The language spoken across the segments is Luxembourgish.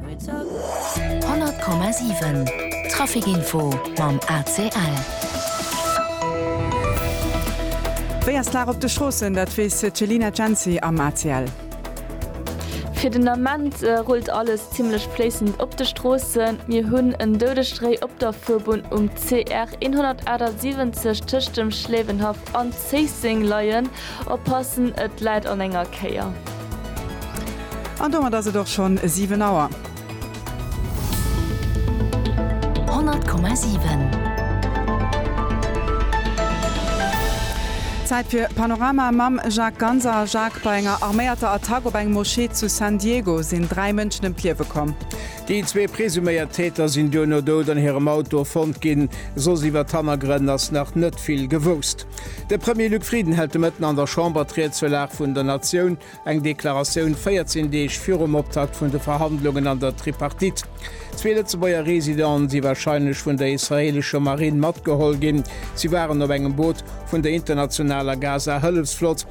100,7 Trafic Info mam ACL. Wéi ass d'Lag op de Stroossen, dat weess d'Selina Cenci am ACL. Fir den Ament rullt alles zimmlech fléissend op de Stroossen. Mir hunn en Doudestréi op der Fuerbunn um CR 178 tëscht dem Schléiwenhaff an Zéisseng leien. Oppassen, et läit an enger Kéier. An domat ass et och schonn 7 Auer. 100,7. Zäit fir Panorama mam Jacques Ganser. Jacques, bei enger arméierter Attack op eng Moschee zu San Diego sinn 3 Mënschen ëm d'Liewe komm. Déi zwee presuméiert Täter sinn duerno dout an hirem Auto fonnt ginn, soss iwwer d'Hannergrënn ass nach net vill gewousst. De Premier Luc Frieden hält de Mëtten an der Chamber d'Ried zur Lag vun der Natioun, eng Deklaratioun 14 Deeg virum Optakt vun de Verhandlungen an der Tripartite. Zwee Lëtzebuerger Residenten si warscheinlech vun der israeelescher Marinn matgeholl ginn, si waren op engem Boot vun der internationaler Gaza-Hëllefsflott.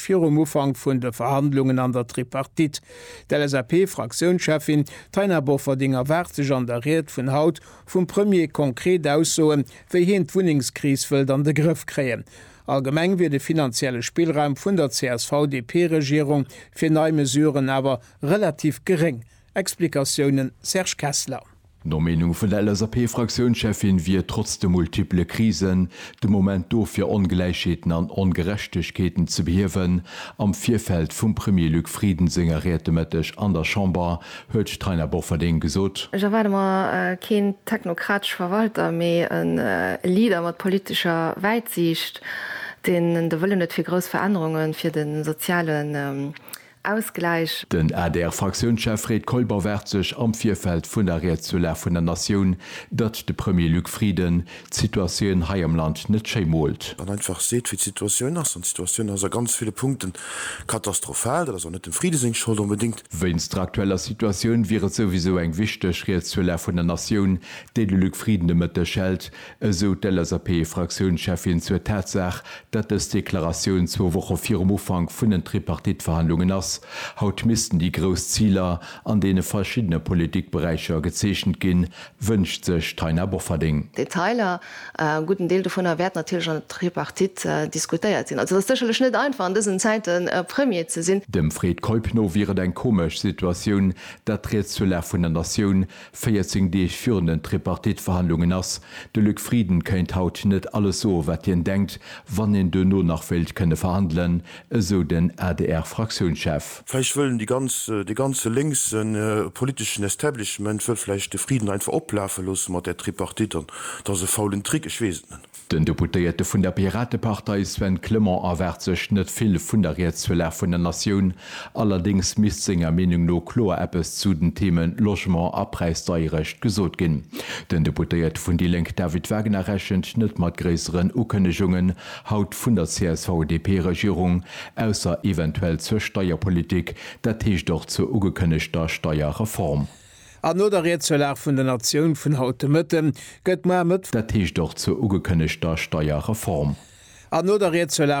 Virum Ufank vun de Verhandlungen an der Tripartite. D'LSAP-Fraktiounscheffin Taina Bofferding erwaart sech an der Ried vun haut vum Premier konkret Aussoen, wéi heen d'Wunnengskris wëllt an de Grëff kréien. Allgemeng wier de finanzielle Spillraum vun der CSV-DP-Regierung fir nei Mesuren awer relativ geréng. Explikatiounen, Serge Kessler. No Meenung vun der LSAP-Fraktiounscheffin wier trotz de multiple Krisen de Moment do fir Ongläichheeten an Ongerechtegkeeten ze behiewen. Am Virfeld vum Premier Luc Frieden senger Ried de Mëtteg an der Chamber huet d'Taina Bofferding gesot, Ech erwaarde mer keen technokratesch Verwalter, mee e Leader mat politescher Wäitsiicht, deen de Wëllen huet fir grouss Verännerunge fir de soziale Ausgläich. Den ADR-Fraktiounschef Fred Keuper waart sech am Virfeld vun der Ried zur Lag vun der Natioun, datt de Premier Luc Frieden d'Situatioun hei am Land net schéi moolt. An einfach seet, wéi d'Situatioun ass. An d'Situatioun ass a ganz ville Punkte katastrophal. Dat ass och net dem Frieden seng Schold onbedéngt. Wéinst der aktueller Situatioun wier et souwisou eng wichteg Ried zur Lag vun der Natioun, déi de Luc Frieden de Mëtteg hält, esou d'LSAP-Fraktiounscheffin zur Tatsaach, datt dës Deklaratioun zwou Woche virum Ufank vun den Tripartite-Verhandlungen ass. Haut missten déi grouss Ziler an deene verschiddene Politikberäicher gezeechent ginn, wënscht sech d'Taina Bofferding. Detailer, a gudden Deel dovunner, wäert natierlech an der Tripartite diskutéiert sinn. Also et ass sécherlech net einfach an dësen Zäiten Premier ze sinn. Dem Fred Keup no wier et eng komesch Situatioun, datt riets zur Lag vun der Natioun 14 Deeg virun den Tripartite-Verhandlungen ass de Luc Frieden, kéint haut net alles soe wat hien denkt, wann een duerno nach wéilt kënne verhandelen, esou den ADR-Fraktiounschef. Vläicht wëllen déi ganz, dee ganze lénkse politeschen Establishment wëll vläicht de Frieden einfach oplafe loosse mat där Tripartite an et ass e faulen Trick, ech weess et net. Den Deputéierte vun der Piratepartei Sven Clement erwaart sech net vill vun der Rietsfirlag vun der Natioun. Allerdéngs misst senger Meenung no kloer eppes zu den Theme Logement a Präisdeierecht gesot ginn. Den Deputéierte vun déi Lénk David Wagner rechent net mat gréisseren Ukënnegungen haut vun der CSV-DP-Regierung, ausser eventuell zur Steierpolitik, dat heescht och zur ugekënnegter Steierreform. An no der Riedselag vun der Natioun vun haut de Mëtte gëtt moar Mëtt. Dat heescht och zur ugekënnegter Steierreform. An no der Riedselag.